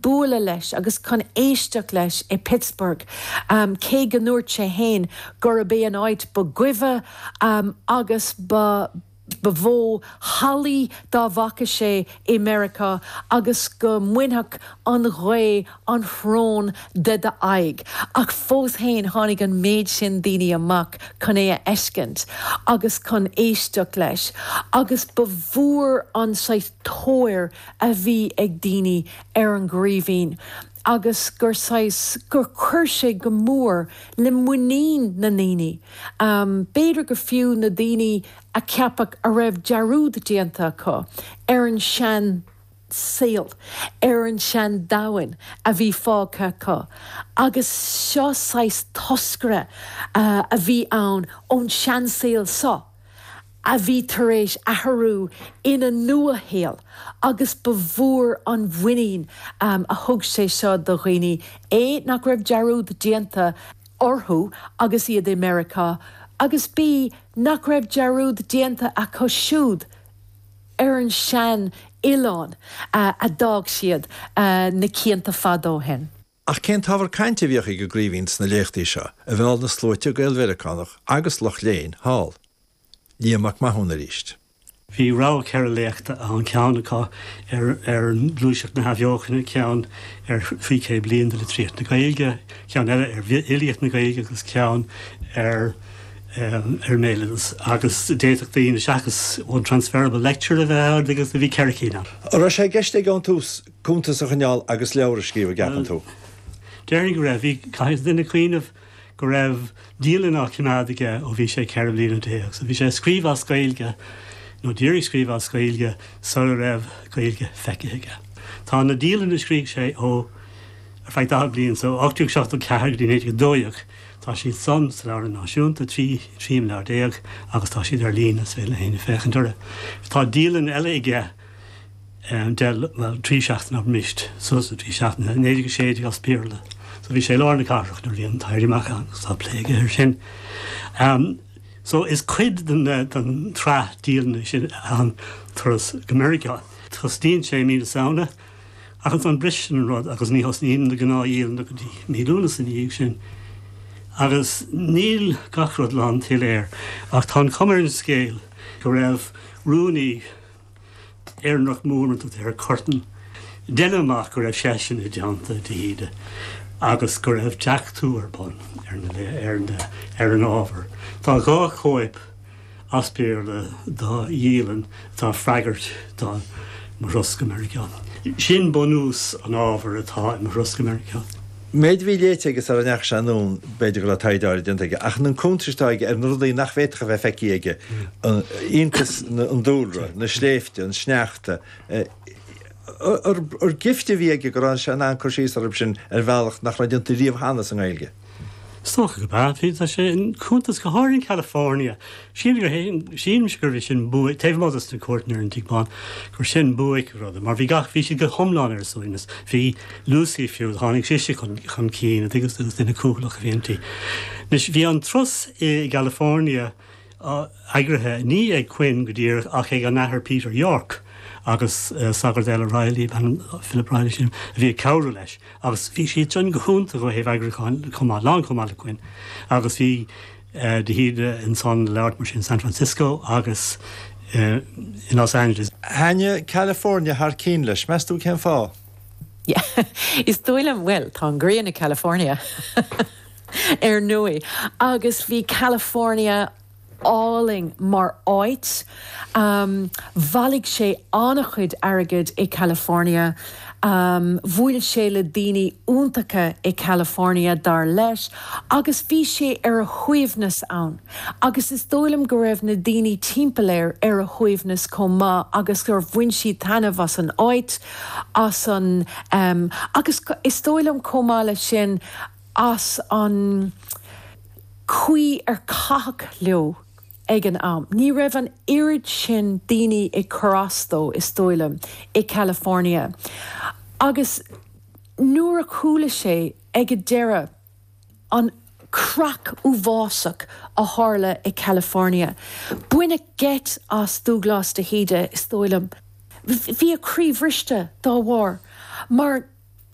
bualadh leis agus chun éisteacht leis i Pittsburgh, cé go ndúirt sé féin gurb é an áit ba goimhe agus ba mhó hallaí dá bhfaca sé i Meiriceá agus go mbainfeadh an ghaoth an tsrón de d'aghaidh. Ach fós féin tháinig an méid sin daoine amach chun é a fheiscint agus chun éisteacht leis agus ba mhór an saghas tóir a bhí ag daoine ar an gCraoibhín agus gur saghas, gur chuir sé go mór le muinín na ndaoine, b'fhéidir go fiú na daoine a ceapadh a raibh dearúd déanta acu ar an seansaol, ar an seandomhan a bhí fágtha acu agus seo saghas toscaire a bhí ann ón seansaol seo. a bhí tar éis athrú ina nuashaol agus ba mhór an mhuinín a thug sé seo do dhaoine A nach raibh dearúd déanta orthu agus iad i Meiriceá agus B nach raibh dearúd déanta acu siúd ar an sean-oileán a d'fhág siad na cianta fada ó shin. Ach cén t-ábhar cainte a bhíodh ag an gCraoibhín sna léachtaí seo a mheall na sluaite Gael-Mheiriceánach agus lucht léinn thall? Liam Mac Mathúna arís. Bhí rogha ceithre léachta ann, ceann acu ar Ghluaiseacht na hAthbheochana, ceann ar Thrí Chéad Bliain de Litríocht na Gaeilge, ceann eile ar Fhilíocht na Gaeilge agus ceann ar ar Bhéaloideas agus d'fhéadfadh daoine seachas one transferable lecture a bheith ann agus bhí ceithre cinn ann. Raibh sé i gceist aige ón tús cuntas a choinneáil agus leabhar a scríobh an gceapann tú? Bhuel. Déarfainn go raibh. Bhí, caithfidh duine cuimhneamh go raibh dialann á choimeád aige ó bhí sé ceithre bliana déag. So bhí sé ag scríobh as Gaeilge, nó d'iarraidh scríobh as Gaeilge, sar a raibh Gaeilge feicthe aige. Tá na dialanna a scrígh sé ó, ar feadh daichead bliain, so 1874 go dtí 1912, tá siad san, sa Leabharlann Náisiúnta, trí imleabhar déag agus tá siad ar líne, so le héinne féachaint orthu. Tá dialann eile aige, de, bhuel, trí seachtaine ar mist, suas le trí seachtaine, i 1916 as Béarla. So bhí sé i lár na cathrach nuair a bhí an tÉirí Amach ann agus tá plé aige air sin. So is cuid den tsraith dialainne sin an turas go Meiriceá. Tosnaíonn sé i mí na Samhna ach ansan briseann an rud agus ní thosnaíonn na gnáthdialanna go dtí mí Lúnasa ina dhiaidh sin. Agus níl gach rud lántsoiléir ach tá an chuma ar an scéal go raibh rúnaí, Éireannach mór an tAthair Curtin. Déanaim amach go raibh seisean i dteannta de hÍde agus go raibh deachtú ar bun ar an ábhar. Tá dhá chóip as Béarla de dhialann atá ag freagairt do Mo Thuras go Meiriceá. Sin bunús an ábhair atá in Mo Thuras go Meiriceá. Méid a bhí léite aige sara ndeachaigh sé anonn b'fhéidir go raibh taighde áirid déanta aige ach an cuntas atá aige ar na rudaí nach bhféadfadh a bheith feicthe aige, an iontas, an dúlra, na sléibhte, an sneachta, ar gift a bhí aige go raibh sé in ann cur síos orthu sin ar bhealach nach raibh déanta riamh cheana sa nGaeilge. Is dócha go mba é an cuntas go háirithe in California Sílimse gurbh é sin buaic, taobh amuigh dos na cuairteanna ar an Tigh Bán, gur sin buaic an ruda, mar bhí gach, bhí siad go hiomlán ar a suaimhneas. Bhí Lucy fiú, tháinig sise chun cinn, a' dtuigeanns tú, agus duine cúthalach a bhí inti. Anois, bhí an turas i gCalifornia eagraithe, ní ag Quinn go díreach ach ag an Athair Peter Yorke agus sagart eile, Reilly ab ainm, Philip Reilly sílim, a bhí ag cabhrú leis agus bhí siad sin go hiontach ó thaobh eagrúcháin chomh maith, lán chomh maith le Quinn agus bhí, de hÍde insan leabhar, mar sin San Francisco, agus in Los Angeles. Thaitin California thar cionn leis. Meas tú cén fáth? Yeah, is dóigh liom, bhuel, tá an ghrian i California ar ndóigh, agus bhí California álainn mar áit. Um, bhailigh sé an-chuid airgid i California. Um, bhuail sé le daoine iontacha i California, dar leis, agus bhí sé ar a shuaimhneas ann. Agus is dóigh liom go raibh na daoine timpeall air ar a shuaimhneas chomh maith agus gur bhain siad taitneamh as an áit, as an, um, agus is dóigh liom chomh maith leis sin, as an chaoi ar caitheadh leo. ag an am. Ní raibh an oiread sin daoine ag cur as dó, is dóigh liom, i gCalifornia. Agus nuair a chuala sé ag an deireadh an chreach uafásach a tharla i gCalifornia, baineadh geit as Dúglás de hÍde, is dóigh liom. Bhí a chroí bhriste dá bharr mar